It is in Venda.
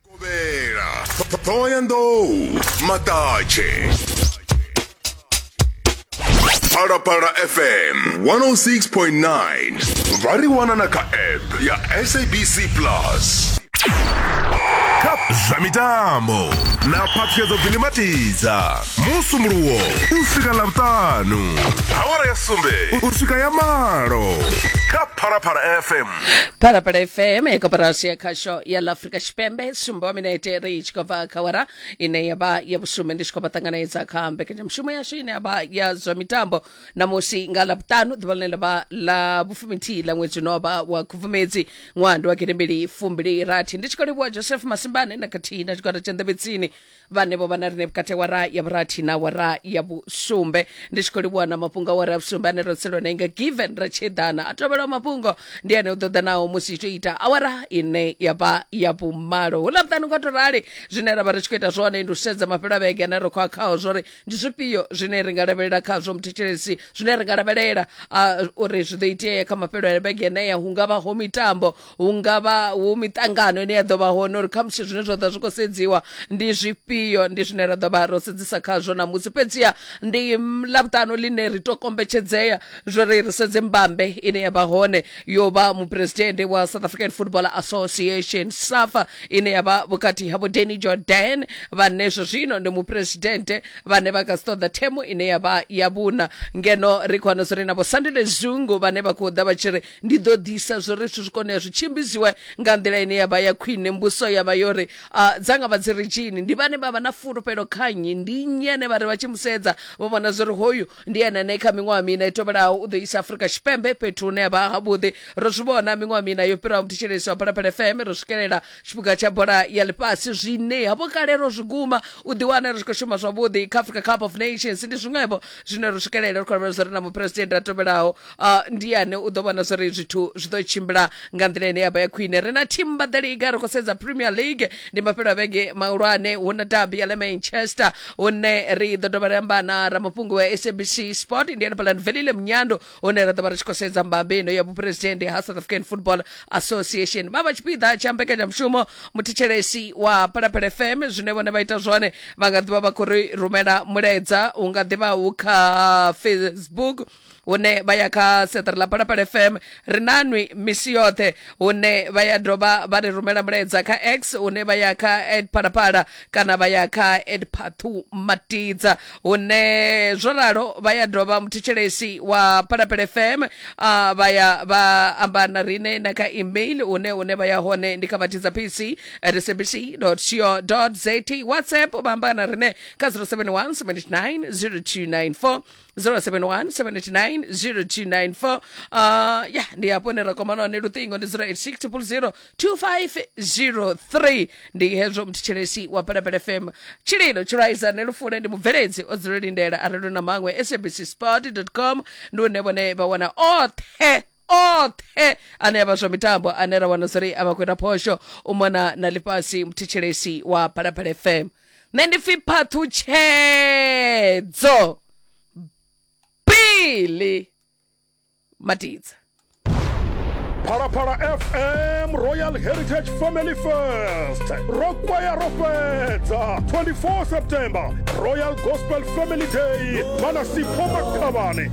Kovhela, Thohoyandou, Maṱatshe. Phalaphala FM 106.9 vha ri wana na kha app ya SABC Plus. Kha zwa mitambo na phaṱhuyedzo gilimatidza musumuluwo u swika ḽa vhuṱanu awara ya sumbe u swika ya malo kha phalaphala fm phalaphala fm ya koporasi ya khasho ya la afrika tshipembe sumbo wa minete ri tshi khou bva kha wara ine ya vha ya vhusumbe ndi tshi khou vha ṱanganedza kha mbekanyamushumo yashu ine ya vha ya zwa mitambo namusi nga lavhuṱanu ḓuvha ḽine ḽa vha ḽa vhufuminthihi ḽa ṅwedzi uno vha wa khubvumedzi ṅwando wa gidembili fumbili rathi ndi tshi khou livhuwa joseph masimbane na khathihi na tshigwada tsha ndebetsini vhanevho vhana rine vhukati wa ra ya vhurathi na wa ra ya vhusumbe ndi tshi khou livhuwa na mafhungo a wa ra ya vhusumbe ane ro tseliwa nainga given ra tshi eḓana a tovhelaho mafhungo ndi ane u ḓo ḓa naho musi tshi ita awara ine ya vha ya vhumalo hu ḽa vhuṱanu nga to rali zwine ra vha ri tshi khou ita zwone ndi u sedza mafhelo a vhege ane ro khou a khaho zwori ndi zwifhio zwine ri nga lavhelela khazwo muthetshelesi zwine ri nga lavhelela ah, uri zwi ḓo itea kha mafhelo a vhege eneya hu nga vha ho mitambo hu nga vha hu miṱangano ine ya ḓo vha hone uri khamusi zwine zwa ḓa zwi khou sedziwa ndi zwifhio ndi zwine ra ḓo vha ro sedzisa khazwo namusi fhedziha ndi mm, ḽavhuṱanu ḽine ri to kombetshedzea zwo ri ri sedze mbambe ine ya vha hone yo vha muphuresidennde wa south african football association safa ine ya vha vhukati ha vho danny jordan vhane zwo zwino ndi muphuresidennde vhane vha kha si ṱoḓa themo ine ya vha ya vhuna ngeno ri khou wana zwo ri na vho sandile zungu vhane vha khou ḓa vha tshi ri Ndi ḓo ḓisa zwo ri zwithu zwi kone u ya zwi tshimbidziwe nga nḓila ine ya vha ya khwine. Mbudziso ya vha yo ri, A dza nga vha dzi ri tshini? Ndi vhane vha vha na fulufhelo kha nnyi? Ndi nnyi ane vha ri vha tshi mu sedza vha vhona zwo ri hoyu ndi ene ane kha miṅwaha miṋa i tevhelaho u ḓo isa Afrika Tshipembe fhethu hune ha vha havhuḓi? Ro zwi vhona miṅwaha miṋa yo fhiraho muthetshelesi wa Phalaphala FM, ro swikelela tshipiga tsha bola ya ḽifhasi zwine havho kale ro zwi guma u ḓiwana ri tshi khou shuma zwavhuḓi kha africa cup of nations ndi zwiṅwevho zwine ro swikelela ri khou lavhelela zwori na muphuresidennde a tovhelaho uh, ndi ane u ḓo vhona zwori zwithu zwi ḓo tshimbila nga nḓila ine ya vha ya khwine ri na team ba the league ri khou sedza premier league ndi mafhelo a vhege mahulwane hu na dabi ya le manchester hune ri ḓo dovha ri amba na ramafhungo wa sabc sport ndi ene palanvelile munyando hune ra ḓo vha ri tshi khou sedza mbambe ino ya vhuphuresidennde ha south african football association vha vha tshipiḓa tsha mbekanyamushumo muthetshelesi wa phalaphala fm zwine vhone vha ita zwone vha nga ḓivha vha khou ri rumela mulaedza u nga ḓivha hu kha facebook hune vha ya kha seṱari ḽa phalaphala fm ri nanwi misi yoṱhe hune vha ya dovha vha ri rumela mulaedza kha x hune vha ya kha phalaphala kana vha ya kha edpathu matidza hune zwo ralo vha ya dovha muthetshelesi wa phalapele fm a vha ya vha amba na rine na kha email hune hune vha ya hone ndi kha matidza pc at sabc co za whatsapp vha amba na rine kha 071 79 0294 071 uh, ya ndi hafho hune ra kwamana hone luṱingo ndi 086 2503 ndi hezwo mthetshelesi wa pelapele fm tshililo tshilwaizane lufune ndi mubveledzi o dzula lindela arelo na maṅwe sabc sport com ndi une vhone vha wana oṱhe oṱhe ane avha zwa mitambo ane ra wana zwori a vha khou ita phosho u mona na ḽifhasi muthetshelesi wa phalaphala fm nṋe ndi pfi phaṱhutshedzo bili matidza phalaphala fm royal heritage family fest ro kwaya ro fhedza 24 september royal gospel family day manasipho makhavhani